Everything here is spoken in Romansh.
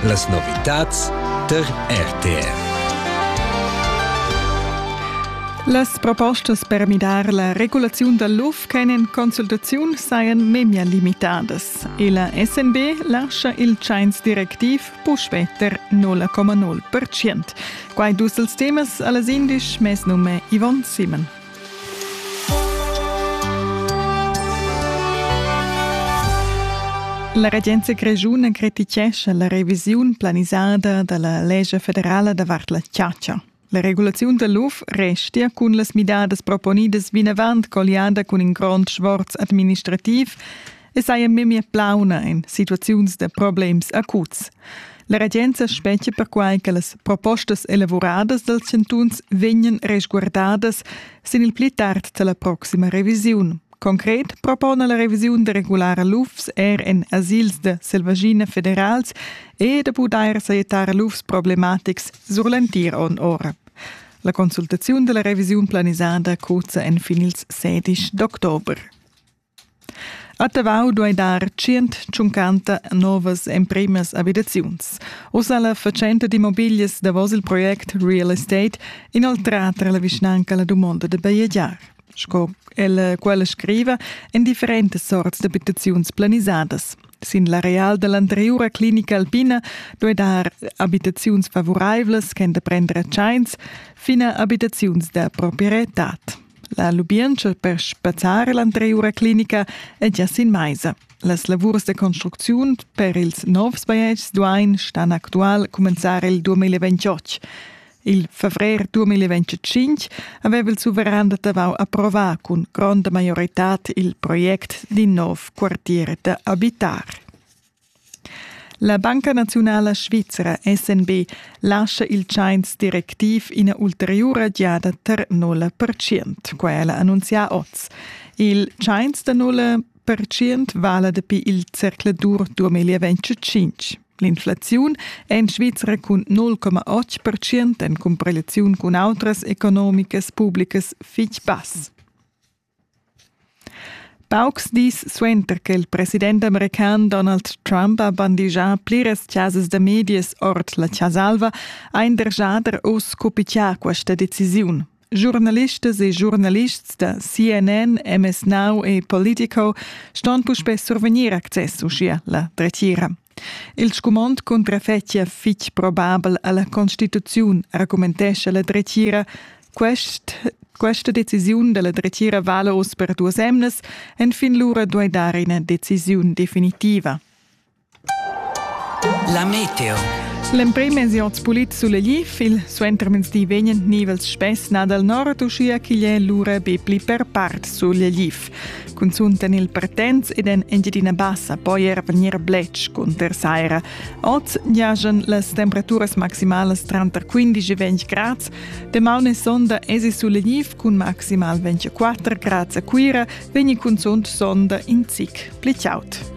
Las novitads tar RTR. Las propostas per midar la regulaziun dal luf ch'èn en consultaziun sajan memia limitadas. E la SNB lascha il tschains directiv puspè ter 0,0%. Quai dus els temas a las indisch mes nume Yvonne Simon. La regenza grischuna criticescha la revisiun planisada da la lescha federala davart la chatscha. La regulaziun da l'UF restia cun las midadas proponidas vinavant colliada cun in grond sforz administrativ e saja memia plauna en situaziuns da problems acuts. La regenza spetga perquai che las propostas elavuradas dals chantuns vegnan resguardadas sin il pli tard da la proxima revisiun. Concret propona la revisiun da regulara lufs er en asils da selvagina federals e da pudair sajettar lufs problematics sur l'entir onn ora. La consultaziun della revisiun planisada cozza en fin ils 16 d'october. A Tavau duai dar tschient tschuncanta novas emprimas abitaziuns. Uss ha la fatschenta d'immobiglias davos il project Real Estate inoltrà tra la vischnanca la dumonda da bajegiar. Sco ella quella scriva, en differentas sorts d'abitaziuns planisadas. Sin l'areal da l'anteriura clinica alpina duai dar abitaziuns favuraivlas ch'èn da prender a tschains fin a abitaziuns da proprietad. La lubientscha per spazzar l'anteriura clinica è gia sin maisa. Las lavurs da construcziun per ils novs bajetgs duain stan actual cumenzar il 2028. Il favrer 2025 aveva il suveran da Tavau approvar cun gronda maioritad il project d'in nov quartier da abitar. La Banca naziunala svizra SNB lascha il tschains directiv ina ulteriura giada tar nulla percient. Quella annunzia oz. Il tschains da nulla percient vala dapi il zercla dur 2025. L'inflaziun è en Svizra cun 0,8% en cumparegliaziun cun autras economicas pubblicas fitg bass. Paucs dis suenter che il president american Donald Trump ha bandigià pliras chasas da medias ord la Chasa Alva, ha in der jader uss cupichà questa decisiun. Giurnalistas e giurnalists da CNN, MS Now e Politico ston puspè survegnir access uschia la dretgira. Il scumond cuntra fetgia fitg probabel alla constituziun, argumentescha la dretgira. Quest questa decisiun della dretgira vala oz per duas emnas, enfin lura duei dar ina decisiun definitiva. La meteo. L'emprim ensiot pulit sulegliv, il suentermezdi vegnan nivels spess nà dal nord, uschia ch'igl è lura be pli per part sulegliv. Cunzunt en il Pertens ed en Engiadina Bassa poi er vegnir bletsch cunter saira. Oz giajan las temperaturas maximalas tranter 15 e 20 grads. Damaun e sonda esi sulegniv cun maximal 24 grads a Cuira, vegni cunzunt sonda in zic pli chaud.